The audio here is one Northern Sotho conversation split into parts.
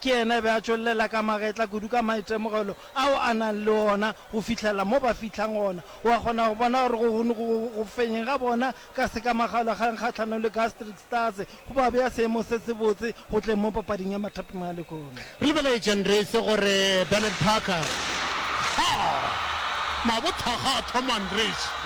Ke yena a be a tšwellela ka magetla kudu ka maitemogelo ao a nang le ona go fihlelela mo ba fihlang gona. O a kgona go bona gore go go go fenyeng ga bona ka sekamagalogang kgahlanong le Gastric Stars go ba bea seemong se sebotse go tleng mo papading ya mathapima a lehono. Re lebeletše Ndrese gore Bernard Parker, tlhogo, mabothakga a thoma Ndrese.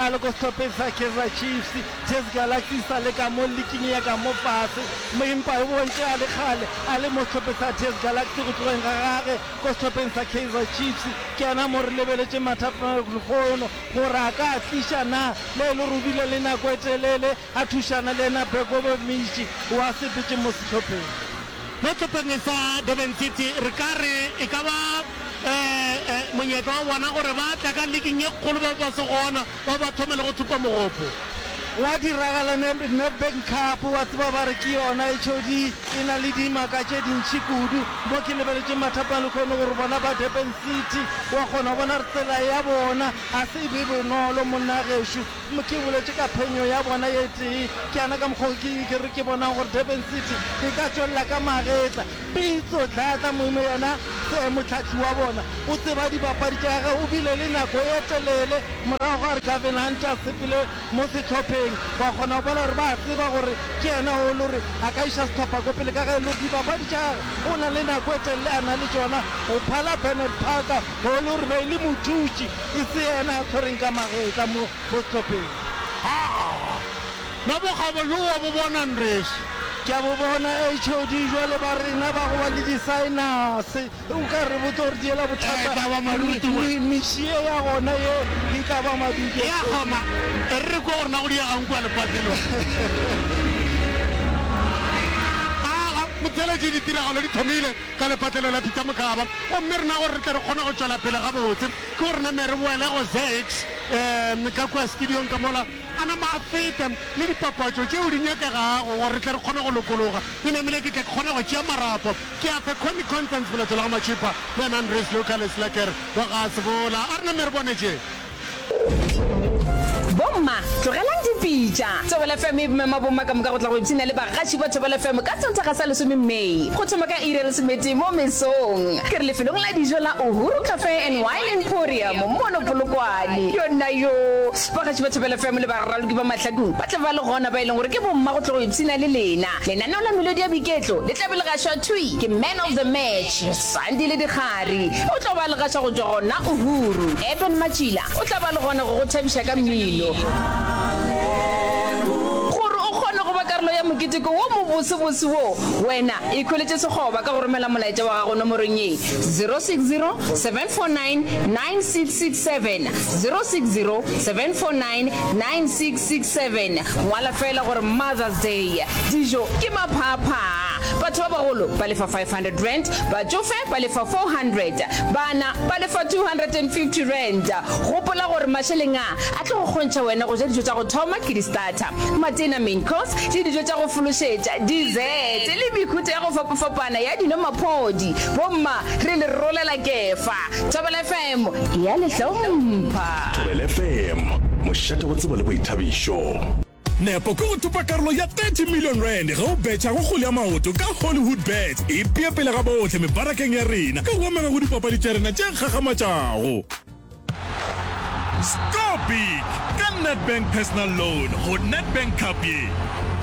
A le ko sehlopheng sa Kaizer Chiefs, TS Galaxista le ka mo liking ya ka mo fase, mo empa e bontše a le kgale a le mo sehlopheng sa TS Galaxy. Go tlogeng ga gage ko sehlopheng sa Kaizer Chiefs, ke yona mo re lebeletšeng mathapelo lehono gore a ka a tliša na, mo e le gore o bile le nako e telele a thušana le yena Bekobo Mishi wa Sebete mo sehlopheng. Mo sehlopheng sa Durban City re ka re e ka ba monyetla wa bona gore ba tla ka liking ye kgolo ba be ba se gona ba ba thome le go thupa mogopo. Gwa diragala Nedbank Cup, wa tseba ba re ke yona e tšhodi e na le dimaka tše dintši kudu. Mo ke lebeletše mathapang lehono gore bona ba Durban City wa kgona bona re tsela ya bona ga se e be bonolo monna gešo Ke boletše ka phenyo ya bona ye tee, ke yana ka mokgwa o ke re ke bonang gore Durban City e ka tšwelela ka magetla. Pitso Dladla Moime yena ke mohlahli wa bona, o tseba dibapadi tša gagwe, o bile le nako e telele morago ga gore Gavin Hunt a sepele mo sehlopheng. Wa kgona go bona gore ba tseba gore ke yena o e le gore a ka iša sehlopha ko pele ka ge e le gore dibapadi tša gagwe o na le nako e telele a na le tšona go phala Bernard Parker, Golo re be le mothuši, e se yena a tshwereng ka magetla mo sehlopheng. Haa! Nabo ga bo lo wa bo bona nresi? Ke a bo bona HOD, jwale ba rena ba go ba le disaenase, o ka re botse gore di yela bothata. E ka ba madudu we. Miši ye ya gona ye e ka ba madudu. E a goma, e re re kwe gore na go diega'ng kua lefaseng. Haa! Motšweletši, ditiragalo di thomile. ka lepatlelo la Peter Mokaba, gomme rena gore re tle re kgone go tšwela pele gabotse ke gore name re boele go Zax um ka kua studiong ka mola, a nama a feta le dipapatšo tšeo di nyakegago gore re tle re kgone go lokologa. Ke namile ke tle ke kgone go tšea marapo ke a fe Connie Constance Molato la ga Matšhipa le Andries Luka Leslaker wa ga Sebola. A re name re bone tše. Bomma, tlogelang dipitša. Thobela FM e mema bomma ka moka go tla go ipshina le bagaši ba Thobela FM ka Sontaga sa lesome May, go thoma ka iri ya lesometee mo mesong. Ke re lefelong la dijo la Uhuru Cafe and Wine Emporium mono Polokwane. Yonnayoo! Bagaši ba Thobela FM le baraloki ba mahlakong ba tla ba le gona, ba e leng gore ke bomma go tla go ipshina le lena. Lenaneo la melodi ya boiketlo le tla be le gašwa thwi ke Man of the Match. Sandi le Dikgari o tlo ba legaša go tšwa gona Uhuru. Eben Matšila o tla ba le gona go go thabiša ka mmino. Gore o kgone go ba karolo ya moketeko wo mobosebose wo, wena ikhweletše sekgoba ka go romela molaetša wa gago nomorong ye, 0607499667, 0607499667. Ngwala feela gore Mother's Day. Dijo ke maphaaphaa. Batho ba bagolo ba lefa R500, batšofe ba lefa R400, bana ba lefa R250. Gopola gore mašeleng a a tlo go kgontšha wena go ja dijo tša go thoma ke di-starter, matena, main course, le dijo tša go fološetša, dessert, le mehuta ya go fapafapana ya dino-maphodi. Bomma, re le rolela kefa. Thobela FM e a le hlompha. Thobela FM, mošate wa tsebo le boithabišo. Nepo ke go thopa karolo ya 30 million rand ge o betšha go kgole ya maoto ka Hollywood Bets. Ipee pele ga bohle mebarakeng ya rena ka go amega go dipapadi tša rena tše kgakgamatšago. Score big ka Nedbank Personal Loan go Nedbank Cup ye.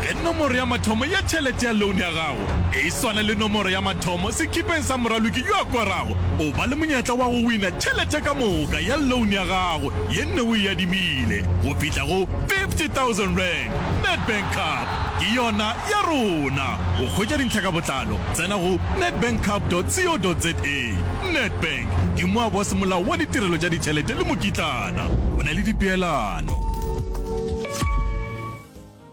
Ge nomoro ya mathomo ya tšhelete ya loan ya gago e swana le nomoro ya mathomo sekipeng sa moraloki yo a korago, o ba le monyetla wa go wina tšhelete ka moka ya loan ya gago ye nne o e adimile go fihla go 50,000 rand Nedbank Cup ke yona ya rona! Go hwetša dintlha ka botlalo, tsena go nedbankcup.co.za. Nedbank ke moaboasemolao wa ditirelo tša ditšhelete le mokitlana o na le dipeelano.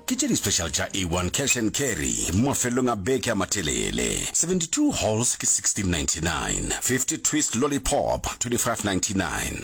Ke tše di-special tša A1 Cash and Carry mo mafelelong a beke a matelele, 72 Halls ke 1699, 50 Twist Lollipop 2599.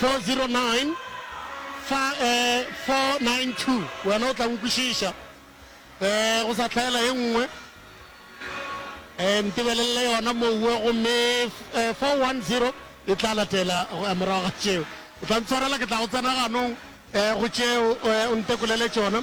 409-492 wena o tla nkwešiša um go sa hlaela ye nngwe um ntebelelele yona mowe gomme 410 e tla latela morago ga tšeo o tla ntshwarela ke tla go tsena ganong um go tšeo um o ntekolele tšona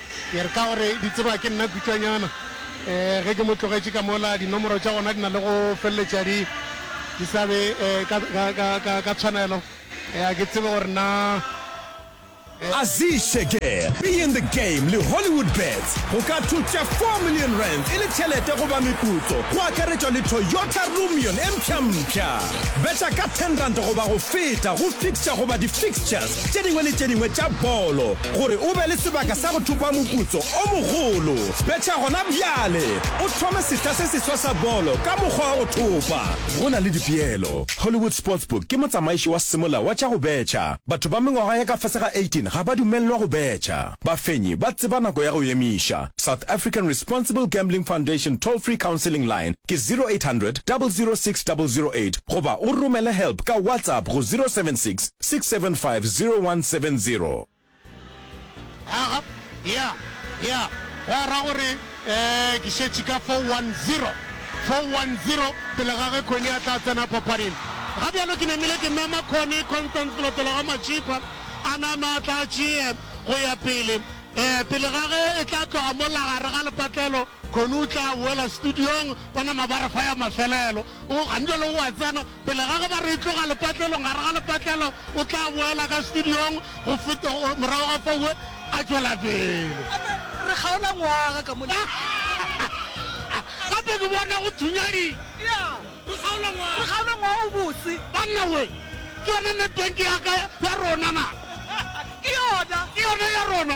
Ke re ka gore di tseba ke nna Kutšanyana, eh, ge ke mo tlogetše ka mola, dinomoro tša gona di na le go feleletša di, di sa be eh, ka, ka, ka, ka, ka tshwanelo. Eh, a ke tsebe gore na eh, Aziz Sheger, Be In The Game le Hollywoodbets go ka thotša four million rands e le tšhelete goba meputso, go akaretšwa le Toyota Rumion e mpšhampšha. Betha ka ten rand goba go feta go fixture goba di-fixtures tše dingwe le tše dingwe tša bolo. Gore o be le sebaka sa go thopa moputso o mogolo, betha gona bjale o thome sehla se seswa sa bolo ka mokgwa wa go thopa. Go na le dipeelo. Hollywood Sportsbook ke motsamaiši wa semolao wa tša go betha. Batho ba mengwaga ya ka fase ga 18 ga ba dumelelwa go betha. Bafenyi ba tseba nako ya go emiša. South African Responsible Gambling Foundation Toll-Free Counselling Line ke 0800 006 008 goba o romele help ka WhatsApp go 076 6750170. Aga, ya, ya, gwa ra gore, ee, ke šetše ka 410, 410, pele ga ge Connie a tla tsena papading. Ga bjalo ke namile ke mema Connie, Constance Loteloga Matšhipa a nama a tla tšee go ya pele, ee, pele ga ge e tla tloga mola gare ga lepatlelo. Kgono o tla boela studiong ka nama ba re fa ya mafelelo. O Angelo o a tsena pele ga ge ba re e tloga lepatlelong. Gare ga lepatlelo o tla boela ka studiong go feta o- morago ga fao we a tšwela pele. Gape re kgaola ngwaga ka mona. Gape ke bona go thunya di. Ya, Re kgaola re ngwaga. kgaola ngwaga o botse. Banna we, ke yone Nedbank ya ka ya rona na? Ke yona. Ke yona ya rona.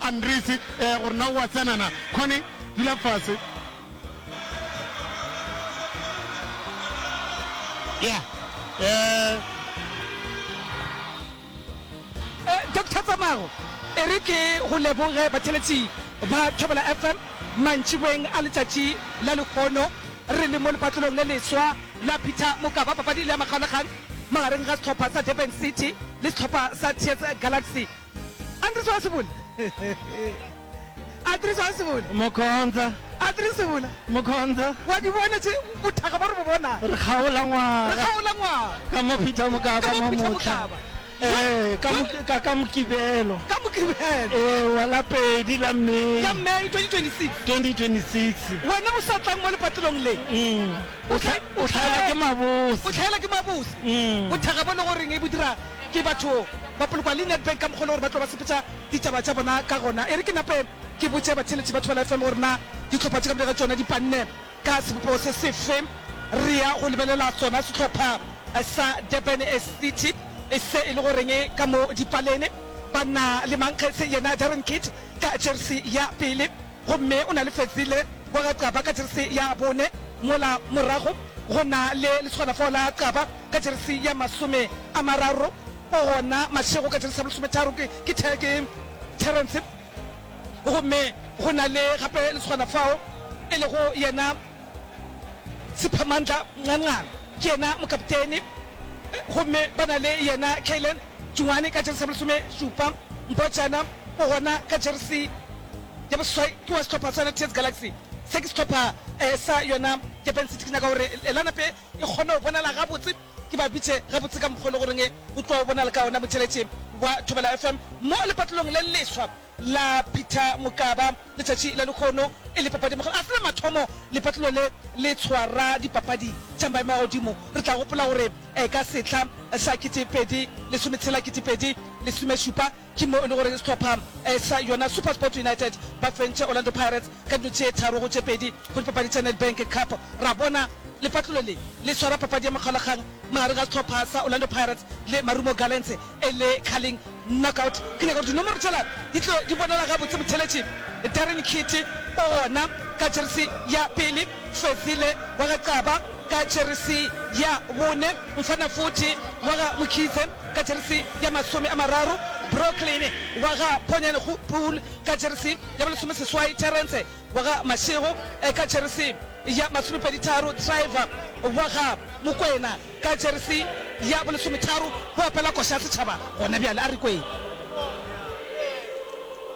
Andries, ee, gore na o a tsena na. Connie, dula fase. Yeah. Eh. Eh, Doctor Tsamago, e re ke go leboge batheletši ba Thobela FM mantšiboeng a letšatši la lehono. Re le mo lepatlelong le leswa la Peter Mokaba, papadi le ya makgalakgang magareng ga sehlopha sa Durban City le sehlopha sa Tears Galaxy. Mokhontsa, Mokhontsa, re kgaola ngwaga ka mo Peter Mokaba mo mohla, ee, ka mo, ka, ka Mokibelo, ewa, la pedi la May 2026. Umm, o hla, o hlaelwa ke mabose. Umm. Ke batho ba polokwa le Nedbank ka mokgwa e le gore ba tlo ba sepetša ditaba tša bona ka gona. E re ke nape ke botše batheeletši ba Thobela FM gore na dihlopha tše ka moka ga tšona di panne ka sebopego se sefe, re ya go lebelela sona sehlopha sa Durban City e se e le goreng ka mo dipalene ba na le mankgethse yena Darren Keet ka jersey ya pele. gomme o na le fetsi le wa ga Qaba ka jeresi ya bone, mola morago go na le lesogana fao la Qaba ka jeresi ya masome a mararo, o gona Mashego ka jeresi ya bolesometharo ke, ke, Te, ke Terence, gomme go na le gape lesogana fao e lego yena Sephamandla Nganqang, ke yena mokaptene, gomme ba na le yena Kaylen. Joane ka jeresi ya bolesome šupa, Mbhojana o gona ka jeresi ya boseswai ke wa sehlopha sa yona TS Galaxy. Se ke sehlopha sa yona Durban City. Ke nyaka gore lanape e kgone go bonala gabotse, ke ba bitše gabotse ka mokgwa o le goreng o tlo bonala ka ona motheletši wa Thobela FM mo lepatlelong le leswa. la Peter Mokaba letšatši la lekgono e le papadi makgolo a fela mathomo. Lepatlelo le le tshwara dipapadi tša maemo a godimo. Re tla gopola gore ka sehla sa kete pedi lesome tshela kete pedi lesome šupa ke mo e le gore sehlopha sa yona Supersport United ba fentše Orlando Pirates ka dilo tše tharo go tše pedi go dipapadi tša Nedbank Cup. Ra bona lepatlelo le le tshwara papadi ya makgaolakgang magareng ga sehlopha sa Orlando Pirates le Marumo Gallants e le Carling Knockout, ke nyaka gore dinomoro tšela di tlo di bonala gabotse. Botheletši, Darren Keet o gona ka jeresi ya pele, Fezile wa ga Qaba ka jeresi ya bone, Mfana Futhi wa ga Mkhize ka jeresi ya masome a mararo, Brooklyn wa ga Ponyangopool ka jeresi ya bolesomeseswai, Terrence wa ga Mashego ka jeresi ya masomepeditharo, Driver wa ga Mokwena ka jeresi ya bolesometharo, o opela koša ya setšhaba gona bjale. A re kwee.